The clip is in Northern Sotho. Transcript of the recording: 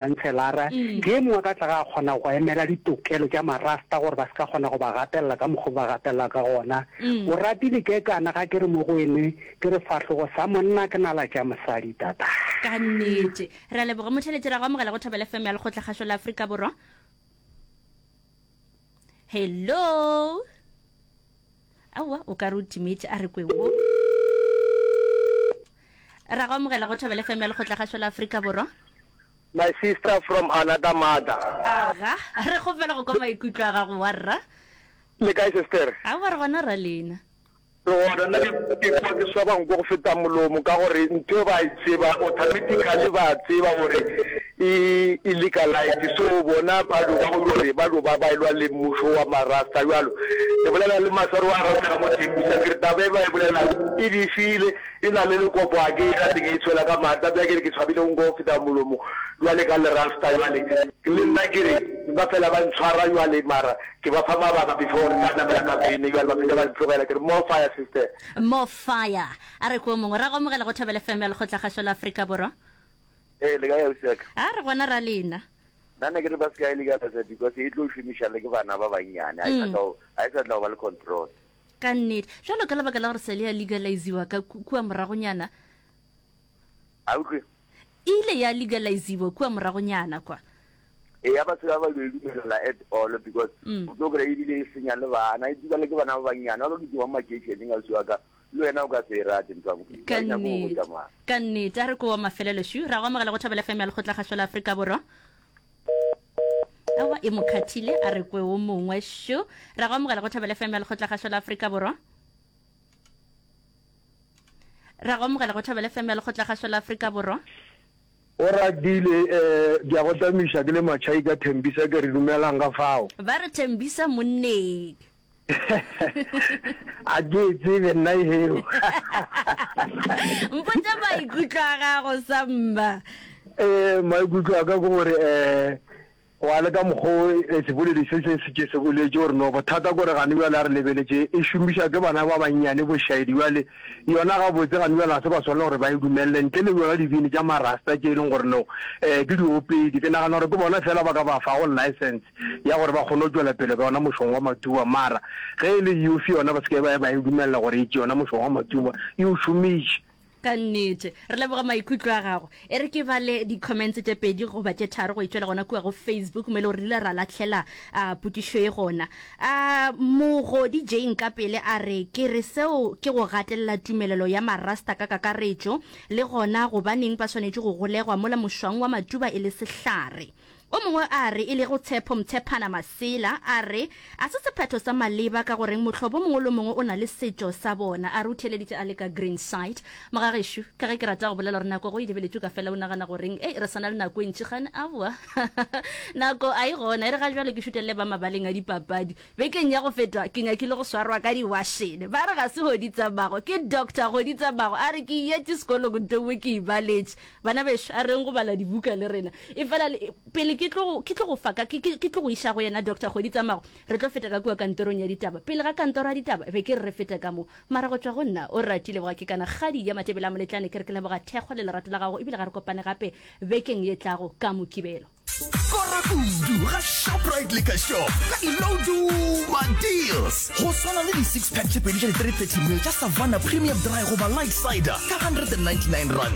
Khanselara ke ye mongwe ka tlaga a kgona go emela ditokelo tša Marasta gore ba se ka kgona go ba gatelela ka mokgwa o ba gatelela ka gona. O ratile kekana ga ke re mo go ene ke re fahlogo sa monna ke nala tša mosadi tata. Ka nnete. Re a leboga motheletši. Re a go amogela go Thobela FM ya Lekgotlakgašo la Afrika Borwa. Hello. aowa o ka re o timetše a re kwe wo ra go amogela go thobele fm ya lekgotlagašo la aforika borwa my sister from another mother aga re kgopela go kwa maikutlo a gago wa rra le kae sister aowa re gona ra lena re gona nna ke kwa ke swabang ko go feta molomo ka gore ntho ba e tseba automatically ba tseba gore E, e legalize. So bona ba lo ba go yo re ba lo ba ba elwa le mmušo wa ma rasta jwalo. Ke bolela le maswaro wa rasta ka mo tshepisa ke re taba e ba e bolelago e bifile e na le lekopo a ke ka teng e tshwela ka maatla bja ke re ke tshwabile go nko go feta molomo jwale ka le rasta jwale le nna ke re ba fela ba ntshwara jwale mara ke ba fa mabaka before re ka namela ka vene jwale ba feta ba ntlogela ke re more fire sister. More fire. A re ko mongwe. Ra go amogela go Thobela FM ya Lekgotlakgašo la Afrika Borwa. Ee, le ka ya usiaka. A re gona ra lena. Nna ne ke re ba se ka e legalize because e tlo šomiša le ke bana ba bannyane. Ha e sa mm. tla go ba le control. Ka nnete. Jalo ka lebaka la gore sele ya legaliziwa ka kua moragonyana. A utlwe. E ile ya legaliziwa kua moragonyana kwa. E ya ba se ba ba le dumelela at all because mm. o tlo kry ebile e senya le bana e dibale ke bana ba bannyane ba ba ke di wa makeišeneng a usiwa ka Le wena o ka se e rate ntwa mokudi. Ka nnete, ka nnete. A re ko wa mafelelo shu. Ra go amogela go Thobela FM ya Lekgotlakgašo la Afrika Borwa. Awa e mo khathile a re kwe o mongwe shu. Ra go amogela go Thobela FM ya Lekgotlakgašo la Afrika Borwa. Ra go amogela go Thobela FM ya Lekgotlakgašo la Afrika Borwa. O ratile eh ke a go tamiša ke le matšhaika thembisa ke re dumelang ka fao. Ba re thembisa monneng. a ke tsebe nna eo mpotsa maikutlo a gago samba eh maikutlo a ka ke gore eh wa le ka mokgo eh, seboledi se se se ke se boletse gore no bothata gore gane bjale a re lebeletse e šomiša ke bana ba bannyane bošaedi bjale yona ga botse gane bjale ga se ba swana gore ba e dumelele ntle le yona dibini tša marasta tše e leng gore no um ke diopedi ke nagana gore ke bona fela ba ka ba fa go license ya gore ba kgone go tšwela pele ka yona mošong wa matuba mara ge e le youth yona ba seke ba ba e dumelela gore e tše yona mošong wa matuba e o šomiše ka nnete re leboga maikutlo a gago e re ke ba le di-comments tše pedi goba tše tharo go itšwela gona kua go facebook mo e le gore rile ra latlhela a potišo e gona a mogodi jane ka pele a re ke re seo ke go gatelela tumelelo ya marasta ka kakaretšo le gona gobaneng ba swanetše go golegwa mola mošwang wa matuba e le sehlare O mongwe a re, e lego Tshepo Mtsephana Masela, a re, A se sephetho sa maleba ka goreng mohlobo o mongwe le o mongwe o na le setšo sa bona. A re o theeleditše a le ka Greenside. Mogagešo, ka ge ke rata go bolela gore nako go e lebeletšwe ka fela o nagana goreng ei, re sa na le nako e ntši gane? Aowa, nako a e gona. E re ga bjale ke šutelele ba mabaleng a dipapadi. Bekeng ya go feta ke nyakile go swarwa ka diwašene. Ba re ga se Goditsamago, ke Doctor Goditsamago. A re ke yetše sekolong ntowe ke ibaletše. Bana bešo, a reng go bala dibuka le rena. Efela le, pele ke tlo, ke tlo go fa ka, ke, ke, ke tlo go iša go yena Doctor kgwedi tsa mago, re tlo feta ka kua kantorong ya ditaba. Pele ga kantoro ya ditaba, be ke re re fete ka mo. Mara go tšwa go nna, o rati, leboga, ke kana kgadi ya Matebele a Moletlane, ke re ke leboga thekgo le lerato la gago, ebile ga re kopane gape bekeng ye tlago ka Mokibelo. Skora kudu ga Shoprite Liquor Shop ka di-low duba deals. Go swana le di-six pack tše pedi tša di-330 ml tša Savanna Premium Dry goba Light Cider ka R199.